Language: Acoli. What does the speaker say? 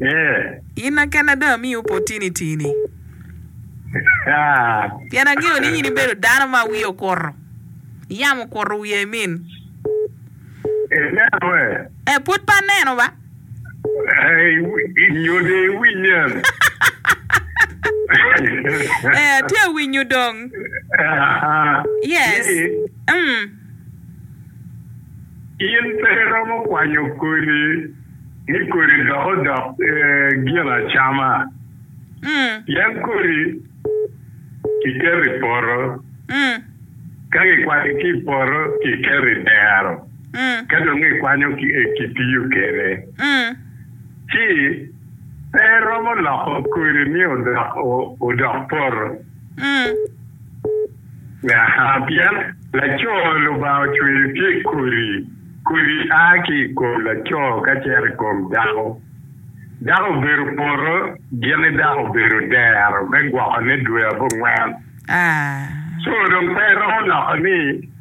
Ee. In na kena dong amiyi opportunity-ni. Haa. Pien angeyo ni in ibedo dano ma wiye okuto. Yam okuto wiya i min. Ineno ee? Ee, pud pe aneno ba. Ee, nyode iwinyen. Ee, atye awinyo dong. Haa. Yes. Ni. Umm. In pe iromo kwanyo kodi ni kodi dok odok ginacama, pien kodi kiketo i poto, ka kikwanyo ki i poto kiketo i dero, ka dong kikwanyo kitiyo kwede. Ci, pe iromo loko kodi ni odok poto. Pien laco Lubanga ocweyo tye kodi, kodi a ki i kom laco ka cito i kom dako. Dako obedo poto, gin-ni dako obedo dero me gwokone dwe abongwen. Co dong pe iromo loko ni,